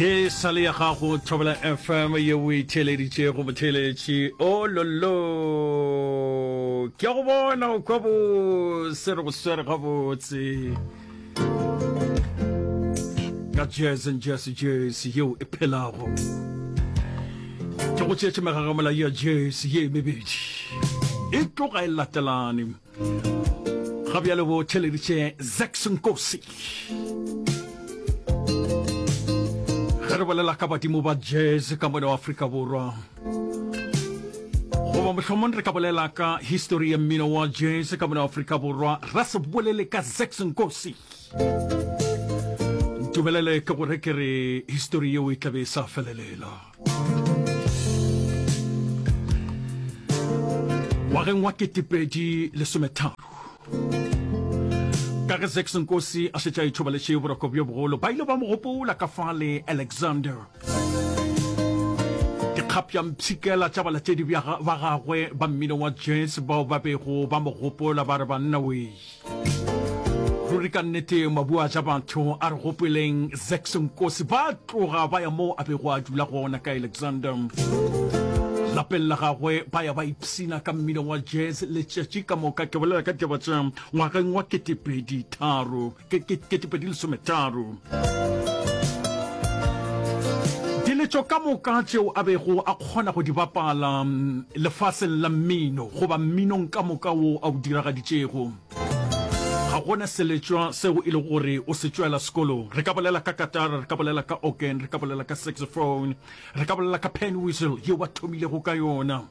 ye sale ya gago thobela fm ye o e theeleditše go motheeletši o lollo ke a go bona o kwa bose re go swere gabotse ka jese jese jese yeo e phelago ke go tšeetše megagamola ya jese ye mebedi e tloga e latelane ga bjale bo theleditše zax nkosi ge re bolela ka badimo ba jazz ka mone wa afrika borwa goba mohlomong re ka bolela ka history ya mmino wa jazz ka mone wa afrika borwa ra se bolele ka zax nkosi dumelele ke gore ke re history yeo e tlabe e sa felelela ngwageng wa ketepedi lesometharo ka ge zex nkosi a šetša itšhobaletše boroko bjo bogolo ba ile ba mo gopola ka fa le alexander dikgapjampshikela tša balatedi ba gagwe ba mmino wa jazz bao ba bego ba mo gopola ba re banna wei ruri ka nnete mabu a ja batho a re gopeleng zaxo nkosi ba tloga ba ya moo a bego a dula gona ka alexander lapeng la gagwe ba ya ba ipsina ka mmino wa jazz letšatši ka moka ke bolela ka taba tša ngwageng wa ketepedi tharo ketepedi lesometharo Diletšo ka moka tšeo a bego a kgona go di bapala lefaseng la mmino goba mminong ka moka wo a o diragaditšego. Ga go na seletšwa seo e lego gore o se tšwela sekolong. Re ka bolela ka katara, re ka bolela ka organ, re ka bolela ka saxophone, re ka bolela ka pan whistle yeo a thomilego ka yona.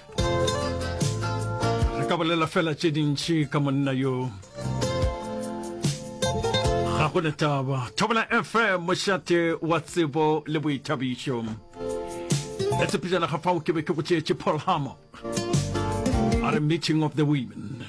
re ka bolela fela tše dintšhi ka monna yo ga go ne taba thobela fm mošate wa tsebo le boithabišo le tshepejana ga fao ke be ke go tšeetše paul hammer a re meeting of the women